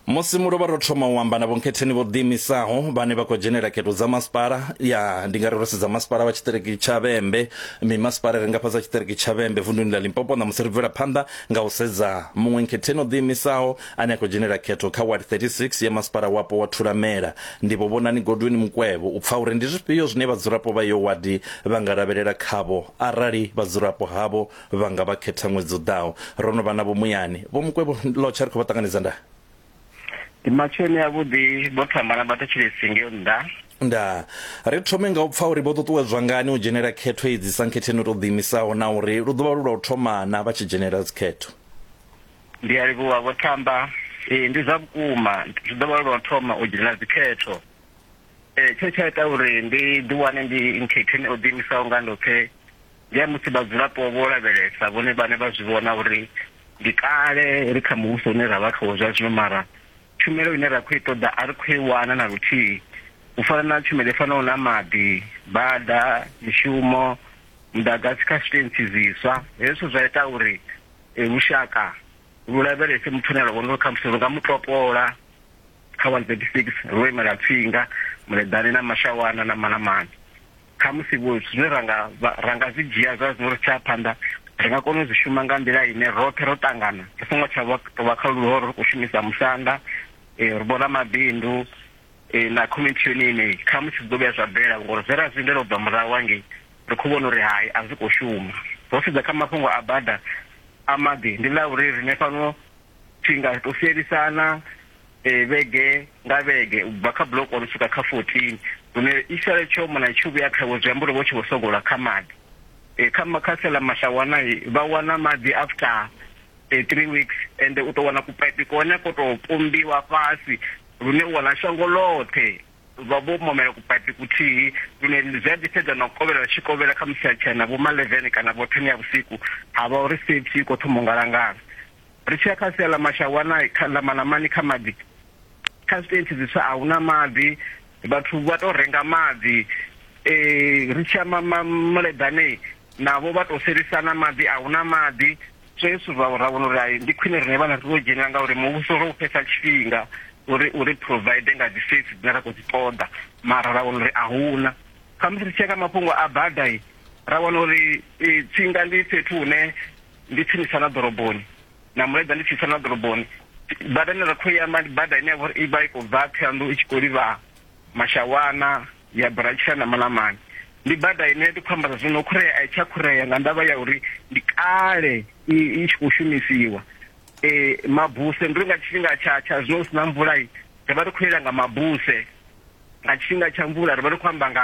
Musi mu lovha ro thoma u amba na vhonkhetheni vho ḓiimisaho vhane vha khou dzhenela khetho dza masipala ya ndi nga ri ro sedza masipala wa tshiṱiriki tsha Vhembe mimasipala ri nga fhasi ha tshiṱiriki tsha Vhembe vunḓuni ḽa Limpopo na musi ri bvela phanḓa nga u sedza muṅwe nkhetheni o ḓiimisaho ane a khou dzhenela khetho kha ward 36 ya masipala wapo wa Thulamela ndi vho Vhonani Godwin Mukwevho u pfa uri ndi zwifhio zwine vhadzulapo vha yo wadi vha nga lavhelela khavho arali vhadzulapo havho vha nga vha khetha ṅwedzi u ḓaho. Ro no vha navho muyani. Vho Mukwevho, Lotsha ri khou vha ṱanganedza nda. Ndi matsheloni avhuḓi, vho thamba na vhathetshelesi ngeo nnḓa. Nda. Ri thome nga u pfa uri vho ṱuṱuwedzwa ngani u dzhenela khetho idzi sankhetheni u tou ḓiimisaho na uri lu ḓo vha lu lwa u thoma na vha tshi dzhenela dzikhetho. Ndi a livhuwa, vho thamba. Ee, ndi zwa vhukuma, zwi ḓo vha lu lwa u thoma u dzhenela dzikhetho. Ee, tshe tsha ita uri ndi ḓiwane ndi nkhetheni o ḓiimisaho nga ndoṱhe ndi ya musi vhadzulapo vho lavhelesa vhone vhane vha zwi vhona uri ndi kale ri kha muvhuso une ra vha khawo zwa zwino mara tshumelo ine ra khou i ṱoḓa a ri khou i wana na luthihi u fana na tshumelo i fanaho na maḓi bada mishumo muḓagasi kha zwitentsi zwiswa hezwo zwa ita uri eh, lushaka lu lavhelese muthu ane a vhona uri khamusi lu nga mu topola kha 136 ro imela tsinga muleḓane na mashawana na manamana khamusi vho zwine ra nga ra nga zwi dzhia zwa zwo ri tsha phanḓa ri nga kona u zwi shuma nga nḓila ine roṱhe ro ṱangana ri songo tsha vha to vha kha luhoro ri khou shumisa musanda eh, ri vhona mabindu eh, na community yone ine khamusi zwi ḓo vhuya zwa bela ngori zwe ra zwi lindela u bva murahu hangei ri khou vhona uri hai a zwi khou shuma ro sedza kha mafhungo a bada a maḓi ndi ḽa uri rine fhano thinga ri to sielisana eh, vhege nga vhege u bva kha buloko ri swika kha 14 hune isale tsho mona i tshi vhuya khavho zwi amba uri vho tshi vho sogola kha maḓi um kha makhasi ḽa mashawana vha wana maḓi after um three weeks and u tou wana kupaipi kone ko tou pombiwa fhasi lune u wana shango ḽoṱhe vha vho momela kupaipi kuthihi lune zwi a ḓifhedza na u kovhela tshi kovhela kha musi a tshena vho malevene kana vho thene ya vhusiku ha vha uri safety i khou thoma u ngalangala Ri tshi ya kha sia ḽa Mashawana, kha ḽa Manamani kha maḓi, kha zwitentsi zwiswa a huna maḓi, vhathu vha to renga maḓi, ri tshi ya ma ma muleḓane navho vha to selisana maḓi a huna maḓi. So hezwi ra ra vhona uri hai ndi khwine riṋe vhana ri to dzhenelela ngauri muvhuso ro u fhesa tshifhinga uri uri provide nga dzi service dzine ra khou dzi ṱoḓa mara ra wana uri a huna. Khamusi ri tshi ya kha mafhungo a bada ra wana uri tsinga ndi fhethu hune ndi tsinisa na ḓoroboni na mulaedza ndi tsinisa na ḓoroboni bada ine ra khou i amba ndi bada ine ya vha uri i vha i khou bva thohoyandou i tshi khou livha mashawana ya buratshela na malamani ndi bada ine ndi khou amba zwa zwino khurea a i tsha khurea nga ndavha ya uri ndi kale i i tshi khou shumisiwa eh mabuse ndi uri nga tshifhinga tsha tsha zwino hu si na mvula i ri vha ri khou yela nga mabuse nga tshifhinga tsha mvula ri vha ri khou amba nga